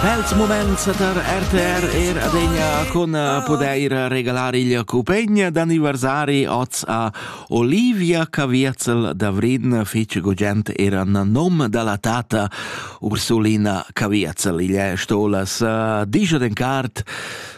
Bels moments tar RTR er adegna con eh, podair regalar il cupegn d'anniversari oz a Olivia Caviezel da Vridn fece gugent era nom dalla tata Ursulina Caviezel. Il è stolas uh, eh, diger en cart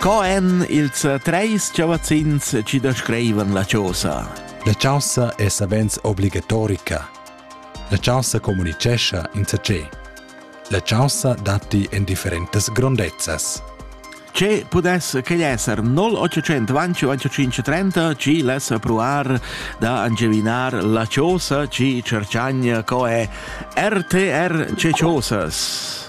Co èn ils treis chavazzins chi descrivan la chosa? La chaussa è savens obligatorica. La chaussa communicescha insatge. La chaussa datti en differentas grondezzas. Ce pudess quegl esser 0825 ci less pruar da angevinar la chiosa ci cercagna co è RTR ce chosas?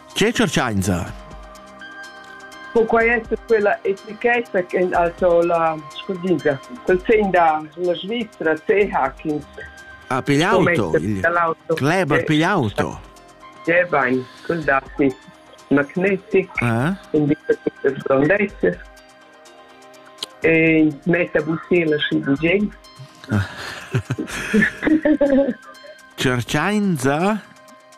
Che tscherchainsa? Po quai esser quella etichetta ch'el ha to la scudina? Quel tegn da la Svizra, CH, ins Ha piglià auto? Il Kleber piglià auto? Ja, bain, quel datti magnetic, eh? in differentes grandezze e metta bussela schi bugent. Cerchainsa?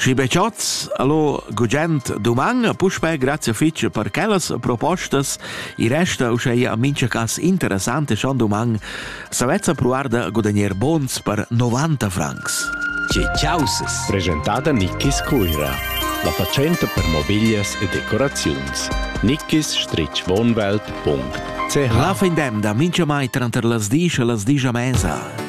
Schi be chats, allo gugent duman, puspè grazia fitg per quellas propostas. I resta uschè mincha cas interessante schon duman, s'avezza provar da guadagner bons per 90 francs. Ci ciausas. Presentada Nickis Cuira. La fatschenta per mobiglias e decoraziuns. nickis-wohnwelt.ch La fin d'emda mincha mai tranter las disch e las disch a mesa.